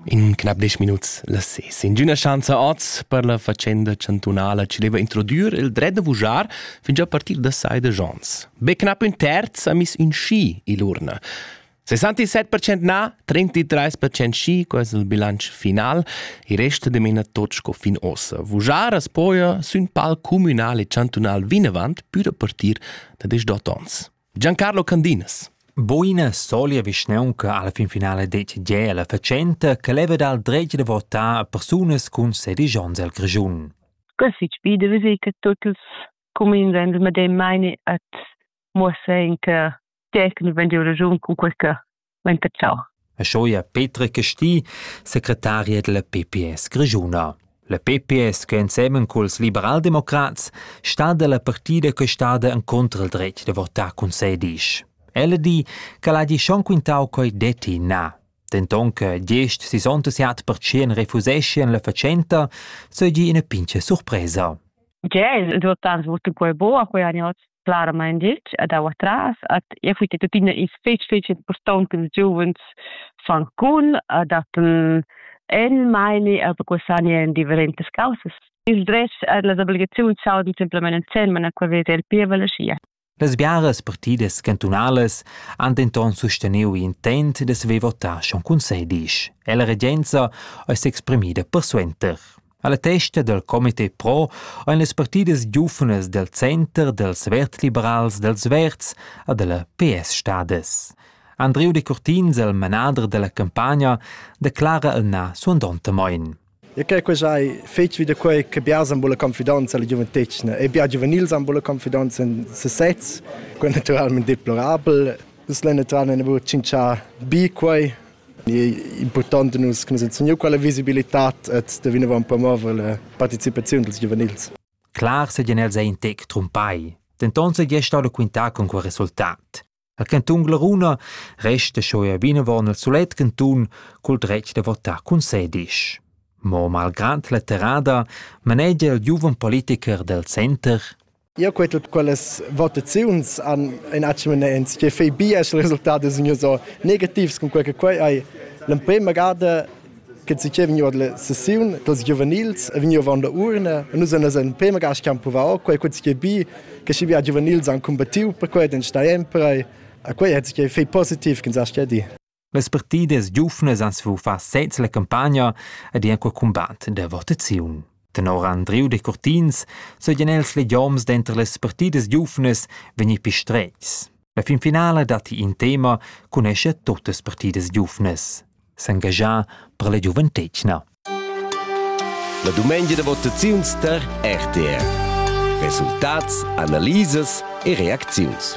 In knap desch minuts las ses. Ingüna schanza oz per la fatschenda chantunala ci deva introdür il dret da vujar fin già a partir da sai de Jons. Be knapp ün terz ha miss in schi ill'urna. 67% na, 33% schi, quasi il bilancio final, e resta de mena tot sco fin ossa. Vujar as poia sün pal communal e chantunal vinavant pür a partir da 18 ons. Giancarlo Candinas. Buina solia vischnaunca alla fin finale decide la facenta che leva dal dretg de votar a persunas cun sedigions el Grischun. Così bi de vedere che tutti els comuni senza medem meine at muossa in che tecnico wenn die Region con qualche Muntacau. E schoia Petra Casti, secretaria della PPS grischuna. La PPS, che ensemen culs liberaldemocrats sta dalla partida che stada en contra il dretg da votar cun se disch. Ella di che l'ha di schon quintau coi detti na. Denton che diesch sessantaseit percent refuseschian la fatschenta, seigi ina pincha surpresa. Ge, il votar voto quei bo a quei anni claramain ditg a dau atras at e fui tuttina is fetg fetg impurtont che ils giuvens fan cun a datten el meini a bequasani en differentas causas il dretg a las obligaziuns saudan semplamain ensemen a qual vede el pievel e sia Las biaras partidas cantunalas han denton susteniu intent da saver votar schon cun sedisch e la regenza ei s'exprimida persuenter. Alla testa del comité pro ein las partidas giuvnas del center dels vertliberals dels verds a della PS stades. Andreu de Curtins, il manader della campagna, declara el na suandonte moin. E che quella hai fatto vi da quei che biasan bulla confidenza alla gioventecina e bia giovanils han bulla confidenza in sesez, quel naturalmente deplorabel. Dus lenne tran ne bu cincia bi quei è impurtant nus che nus han segniu quella visibilitad e da vinavon promover la participaziun dils giuvenils. Clar seigien els ein tec trumpai, denton seigi stau da quintar con quel resultat. El cantun Glaruna resta schon er vinavon il solet cantun col dretg da votar cun sedisch. Mo malgrad la terrada manegia il giuven politiker del center Io quei tut quellas votaziuns han in atschimens che fei bia il resultat da signur so negativs con quei che quei hai l'emprema gada che si che vegniu la sessiun dels giuvenils e vegniu von der urne e nus en in prima gas che provau quei quei che bi che si bia giuvenils han combattiu per quei den sta emprai a quei hat sich fei positiv kin sa stedi Las partidas giuvnas han svuffà sez la campagna ed han cur cumbat da votaziun. Tenor Andriu Decurtins sajan els legioms denter las partidas giuvnas vegnir pistreis. La finfinala datti in tema cun escher tuttas partidas giuvnas. S'engagià per la giuventetgna. La dumengia da votaziuns tar RTR. Resultats, analisas e reacziuns.